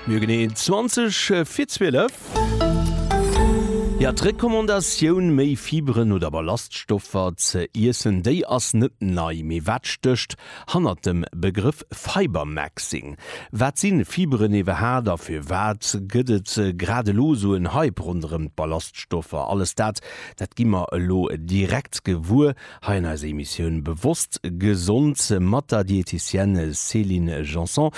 Mir hu genee 20 vir 12. Jo, d'Recommandatioun, méi Fiberen oder Ballaststoffer ze iessen, déi ass net nei. Mee wat stécht hannert dem Begrëff Fibermaxing? Wat si Fiberen iwwerhaat a firwat gëtt et grad elo esou en Hype ronderëm d'Ballaststoffer? Alles dat, dat gi mer elo direkt gewuer. Hei an eiser Emissioun Bewosst Gesond mat der Dietitienne Céline Janson.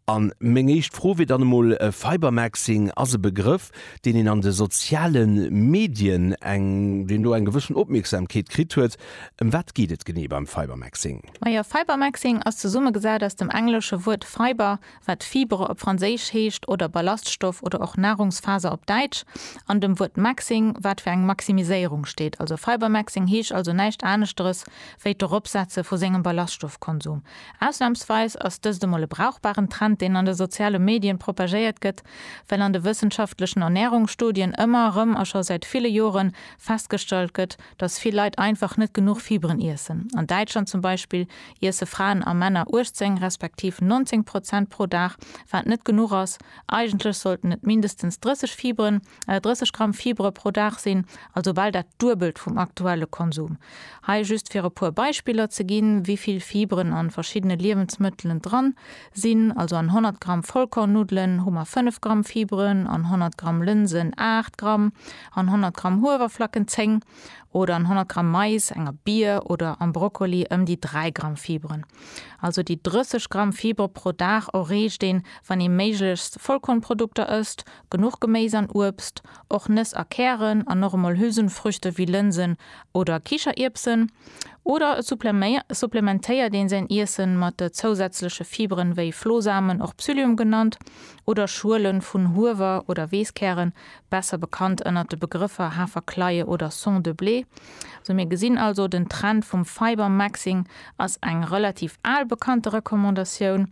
An meng éischt Fro wier dann emol, Fibermaxing ass e Begrëff, deen een an de soziale Medien eng deen do eng gewëssen Opmierksamkeet kritt huet. Ëm wat geet et genee beim Fibermaxing? Majo, Fibermaxing ass zesummegesat aus dem englesche Wuert Fiber wat Fibre op Franséisch heescht oder Ballaststoff oder och Nahrungsfaser op Däitsch, an dem Wuert Maxing, wat fir eng Maximiséierung steet. Also Fibre Maxing heescht also näischt aneschteres wéi d'Eropsetze vu sengem Ballaststoffkonsum. Ausnamsweis ass dëst emol e brauchbaren Trend, deen an de soziale Medien propagéiert gëtt, well an de wëssenschaftlechen Ernährungsstudien ëmmer erëm a scho säit ville Joren festgestallt gëtt, dass vill Leit einfach net genuch Fibren iessen. An Däitschland zum Beispill iesse Fraen a Männer 18 respektiv 19 Prozent pro Dag, wat net genuch ass. Eigentlech sollten et mindestens 30 Fibren, 30 Gramm Fibre pro Dag sinn, also bal dat Duebelt vum aktuelle Konsum. Hei just fir e puer Beispiller ze ginn, wivill Fibren an verschiddene Liewensmëttelen dran sinn, also an 100 Gramm Vollkornnuddelen hu mer 5 Gramm Fibren, an 100 Gramm Lënsen 8 Gramm, an 100 Gramm Huewerflacken 10. oder an 100 Gramm Mais, enger Bier oder am Brokkoli ëm déi 3 Gramm Fiberen. Also déi 30 Gramm Fibre pro Dag erreecht een, wann ee méiglechst Vollkornprodukter ësst, genuch Geméis an Uebst, och Nëss a Kären an och emol Hülsenfrüchte wéi Lënsen oder Kicherierbsen. Oder et supplementéiert ee säin Iesse mat zousätzleche Fiberen, wéi Flohsamen, och Psyllium genannt, oder Schuele vun Huewer oder Weesskären, besser bekannt ënnert de Begrëffer Haferkleie oder Son de blé. Sou mir gesinn also, den Trend vum Fiber Maxing ass eng relativ al bekannte Recommandatioun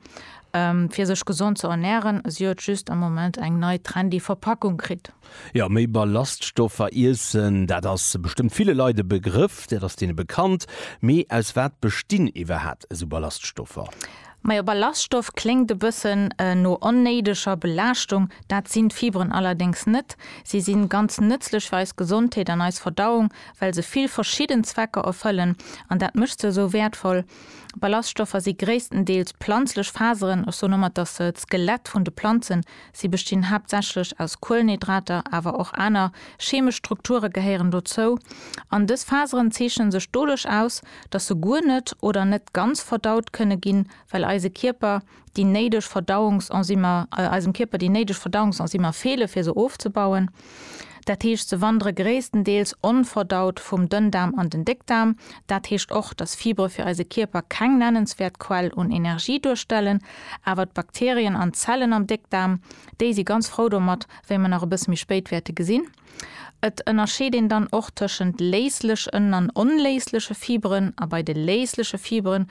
fir sech gesond ze ernären, si huet just am Moment eng nei trendy Verpackung kritt. Jo, méi Ballaststoffer iessen, dat ass bestëmmt ville Leit e Begrëff, dat ass deene bekannt. Mee aus wat bestinn iwwerhat esou Ballaststoffer? Majo Ballaststoff kléngt e bëssen no onnéideger Belaaschtung, dat sinn d'Fiberen allerdéngs net. Si sinn ganz nëtzlech fir eis Gesondheet an eis Verdauung, well se vill verschidden Zwecker erfëllen an dat mécht se esou wäertvoll. Ballaststoffer si gréisstendeels planzlech Faseren, ech soen ëmmer et ass d'Skelett vun de Planzen, Si bestinn haaptsächlech aus Kuelenhydrater, awer och aner cheemesch Strukture gehéieren dozou, an dës Faseren zeechnen sech doduerch aus, datt se guer net oder net ganz verdaut kënne ginn, well eise Kierper déi néideg Verdauungsenzymer eisem Kierper déi néideg Verdauungsenzymer feele fir se ofzebauen. Dat heescht, se wandere gréisstendeels onverdaut vum Dënndaarm an den Déckdaarm. Dat heescht och, dass Fibre fir eise Kierper keng nennenswäert Quell un Energie duerstellen. Awer d'Bakterien an d'Zellen am Déckdaarm, déi si ganz frou domat, wéi mer nach e bësse méi spéit wäerte gesinn. Et ënnerscheet een dann och tëschent léislechen an onléisleche Fibren a bei de léisleche Fibren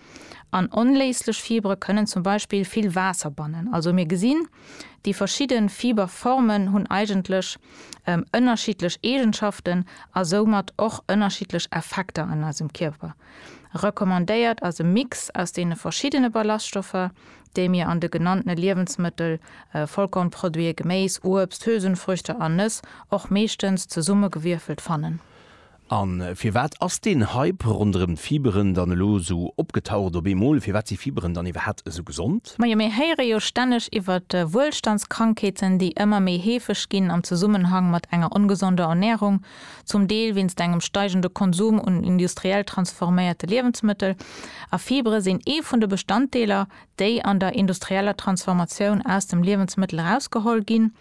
An onléislech Fibere kënnen zum Beispill vill Waasser bannen. Also mir gesinn, déi verschidde Fiberformen hunn eigentlech ënnerschiddlech Eegenschaften a soumat och ënnerschiddlech Effekter an eisem Kierper. Recommandéiert ass e Mix aus deene verschiddene Ballaststoffer, déi mir an de genanntene Liewensmëttel, Vollkornproduite, Geméis, Uebst, Hülsenfrüchte an Nëss, och meeschtens zesummegewierfelt, fannen. A firwat ass deen Hype ronderëm d'Fiberen dann elo esou opgetaucht op eemol? Firwat si Fiberen dann iwwerhat esou gesond? Majo, mir héiere jo stänneg iwwert Wuelstandskrankheeten, déi ëmmer méi heefeg ginn am Zesummenhang mat enger ongesonder Ernärung, zum Deel wéinst engem steigende Konsum un industriell transforméierte Liewensmëttel. A Fibere sinn ee vun de Bestanddeeler, déi an der industrieller Transformatioun aus dem Liewensmëttel erausgeholl ginn.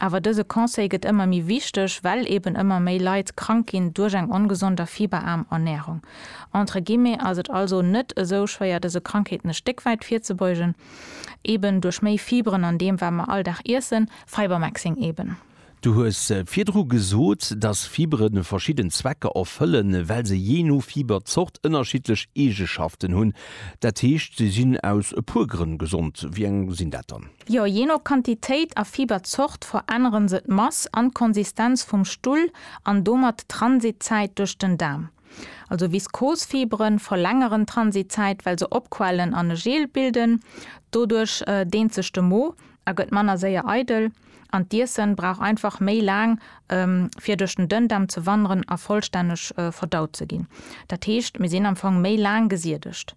Awer dëse Conseil gëtt ëmmer méi wichteg, well eben ëmmer méi Leit krank ginn duerch eng ongesond a fiberaarm Ernärung. Entre guillemets ass et also net esou schwéier dëse Krankheeten e Stéck wäit virzebeugen, eben duerch méi Fiberen an deem wat mer all Dag iessen, Fibermaxing eben. Du hues virdru gesot, dass Fibere verschidden Zwecker erfëllen, well se jee no Fiberzort ënnerschiddlech Eegeschaften hunn. Dat heescht, se sinn aus e puer Grënn gesond. Wéi eng sinn dat dann? Jo, jee no Quantitéit a Fiberzort veränneren se d'Mass an d'Konsistenz vum Stull an domat d'Transitzäit duerch den Daarm. Also Viskosfiberen verlängeren d'Transitzäit, well se opquellen an e Gel bilden. Doduerch deent sech de Mo a gëtt manner séier eidel an d'Iessen brauch einfach méi laang fir duerch den Dënndaarm ze wanderen a vollstänneg verdaut ze ginn. Dat heescht, mir sinn am Fong méi laang gesiedegt.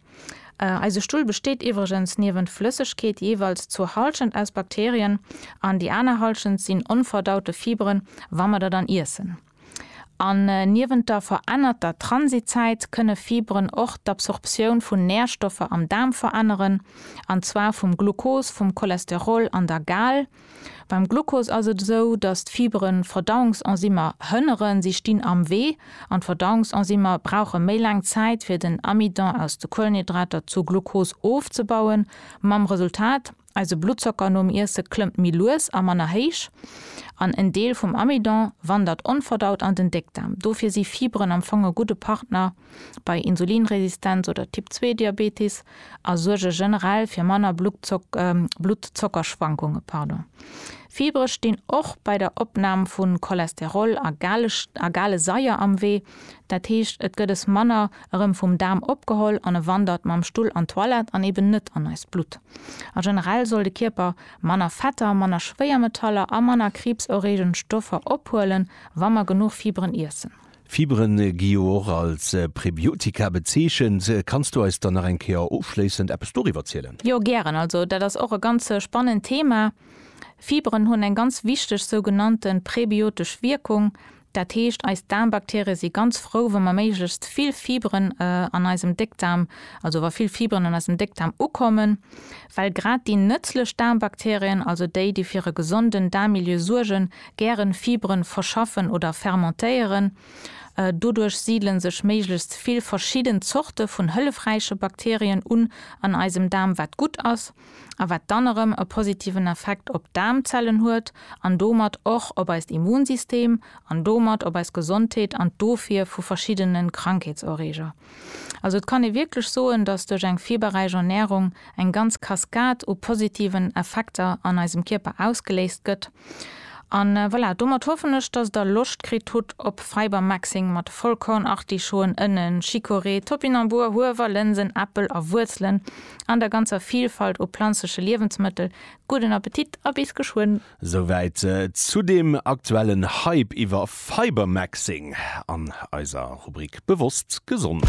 Eise Stull besteet iwwregens niewent Flëssegkeet jeeweils zur Halschent aus Bakterien an déi aner Halschent sinn onverdaute Fiberen, wa mer der dann iessen. An niewent der verännerter Transitzäit kënne Fiberen och d'Absorptioun vun Närstoffer am Daarm veränneren, an zwar vum Glucose, vum Cholesterol an der Gal, Beim Glucose ass et esou, datt d'Fiberen d'Verdauungsenzymer hënneren, si stinn am Wee an d'Verdauungsenzymer brauche méi laang Zäit fir den Amidon aus de Kuelenhydrater zu Glucose ofzebauen, mam Resultat, eise Bluttzocker nom Iesse klëmmt méi lues a manner héich an en Deel vum Amidon wandert onverdaut an den Déckdaarm. Dofir si Fiberen am Fong e gudde Partner. bei Insulinresistenz oder Typ-2-Diabetes a suerge generell fir manner Bluttzockerschwankunge. Fibre stinn och bei der Opnam vu Cholesterol a gale Saier am Wee, dat heescht et gëtt es manner erëm vum Daarm opgeholl an e wandert mam Stull an d'Toilette an eben net an eist Blutt. A generell soll de Kierper manner Fetter, manner Schwéiermetaller a manner kriibserreegend Stoffer ophuelen, wa mer genuch Fibren iessen. Fiberen gi jo och als Prebiotika bezeechent. Kanns du eis dann nach eng Kéier ofschléissend eppes doriwwer zielen? Jo, gären. Also dat ass och e ganz spannend Thema. Fiberen hunn eng ganz wichteg sougenannte prebiotesch Wierkung. Dat heescht, eis Daarmbakterie si ganz frou, wa mer méiglechst vill Fiberen an eisem Déckdaarm, also wa vill Fiberen an eisem Déckdaarm ukommen, well grad déi nëtzlech Daarmbakterien, also déi, déi fir e gesonden Daarmmilieu suergen, Gären Fiberen verschaffen oder fermentéieren. Doduerch siidelen sech méiglechst vill verschidden Zorte vun hëllefräiche Bakterien un an eisem Daarm, wat gutt ass a wat dann erëm e positiven Effekt op d'Daarmzellen huet an domat och op eist Immunsystem an domat op eis Gesondheet an d'Ofwier vu verschiddenen Krankheetserreeger. Also et kann ee wierklech soen, dass duerch eng fiberräich Ernärung eng ganz Kaskad u positiven Effekter an eisem Kierper ausgeléist gëtt. An voilà, domat hoffen ech, dass der Loscht kritt hutt op Fibermaxing mat Vollkornartischoen, Ënnen, Chicorée, Topinambur, Huewer, Lënsen, Äppel a Wuerzelen an der ganzer Vilfalt u planzleche Liewensmëttel. Gudden Appetit a bis geschwënn! Souwäit zu dem aktuellen Hype iwwer Fibermaxing an eiser Rubrik Bewosst Gesond.